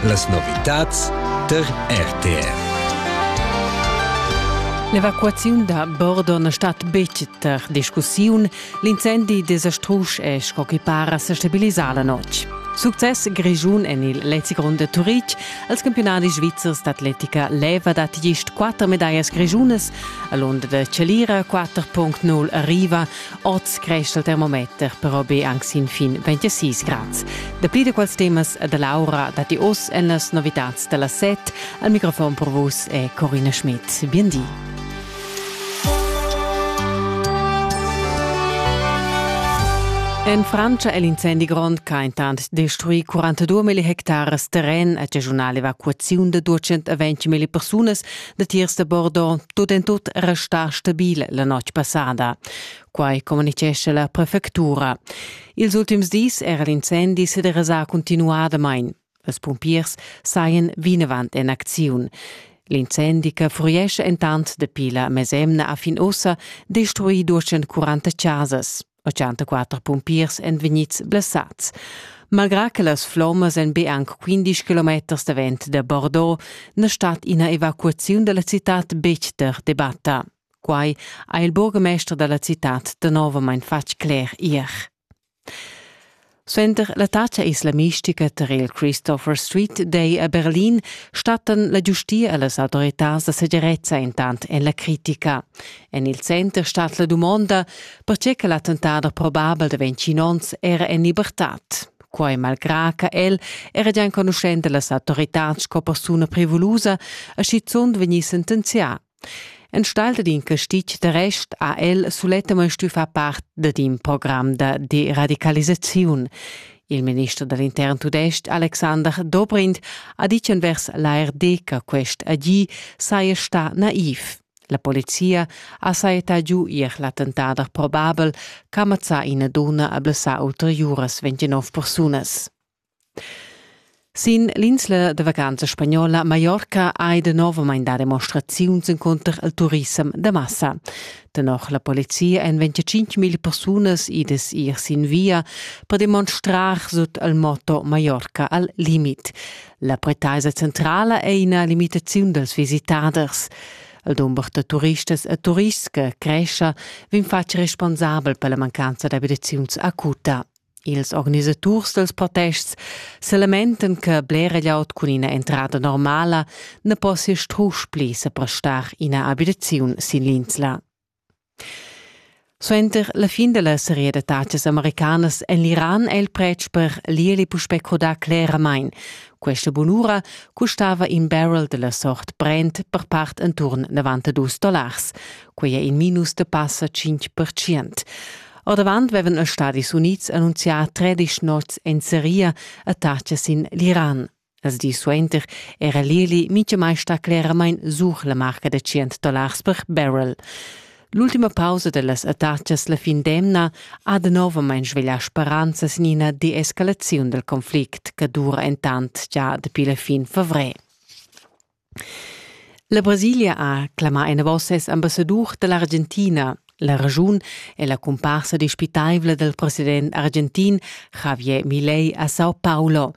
Las novitads tar RTR. L'evacuaziun da Bordo na stat betg tar discussiun. L'incendi desastrus è, sco che para, sa stabilisà la notg. Success grischun en il Lezi Grond a Turitg. Als campionadis svizzers d'atletica leva dat gist quatter medallas grischunas. A l'onda da Celira 4.0 arriva Oz creschel termometer però be anc sin fin 26 grads. Dapli da quels temas da Laura datti oz en las novitads da las set. Al microfon per vus è Corina Schmidt. Bien di. En Francia è l'incendi grond che ha intant destruì 42 hectares terren, a regiunal evacuaziun da 220 persuna Datiers da Bordeaux tut en tut resta stabil la notg passada. Quai communitgescha la prefectura. Ils ultims dis era l'incendi se derasà continuadamain. Las pumpiers saien vinavant en acziun. L'incendi che fuiesce entant dapi la mesemna a fin ussa destruì 240 casas. 84 pumpiers èn vegnids blessads. Malgrà che las flommas èn be anc 15 kilometers davent da Bordeaux, na stat ina evacuaziun da la citad betg der debatta. Quai ha il burgmester da la citad danovamain fatg cler ier. Suenter l'attacca islamistica tar il Christopher Street Day a Berlin stattan la giustia e las autoritads da segirezza intant en la critica. En il center stat la dumonda, pertge che l'attentat probabel da 25 onns era en libertad. Quai malgrà che el era già enconuschent da las autoritads sco persuna privulusa e schizunt vegnì sentenzià Enstagl dad in castig de rest ha el sulettamain stuì far part dad in program da deradicalisaziun. Il minister da l'intern tudestg Alexander Dobrindt ha ditg envers l'ARD che quest agì saja stà naiv. La polizia ha sajettà giu ier l'attentader probabel ch'ha mazzà ina dunna e blessà ulteriuras 29 persunas. Sin l'insla da vacanza spagnola Mallorca hai danovamein dà demonstraziuns encunter il turissem da massa. Tenor la polizia èn 25.000 persunas idas ir sin via per demonstrar sut il motto Mallorca al limit. La pretaisa centrala è ina limitaziun dals visitaders. Il dumber da turistas e turists che crescha vegn fatg responsabel per la mancanza d'abitaziuns acuta. Ils organisaturs dals protests selamenten che blera glieud cun ina entrada normala ne possia strusch pli seprestar ina abitaziun sin l'insla. Suenter la fin della serie da taxas americanas en l'Iran è il pretsch per l'ierli puspè crodà cleramain. Questa bunura custava in barrel della sort Brent per part intorn 92 dollars. Quei è in minus de passa 5%. Ordavant vevan els Stadis Unids annunzià tredisch nots en seria attachas sin l'Iran. Als dis suenter era l'Eli mintgamai stà cleramain sur la marca da 100 dollars per barrel. L'ultima pausa dellas attachas la fin d'emna ha danovamain sveglià speranzas in ina deescalaziun dal conflict che dura entant già dapi la fin favrer. La Brasilia ha clamà enavos ses ambassadur da l'Argentina. La raschun è la cumparsa dispitaivla dal president argentin Javier Milei a Sao Paulo.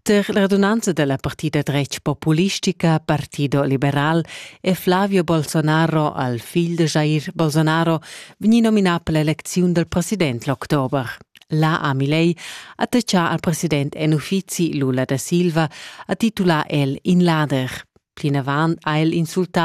Tar la radunanza da la partida dretg populistica Partido Liberal è Flavio Bolsonaro al figl da Jair Bolsonaro vegnì nominà per l'elecziun dal president l'october. La Amilei ha tachà al president en uffizi Lula da Silva, ha titulà el in lader. Plinavant ha el insultà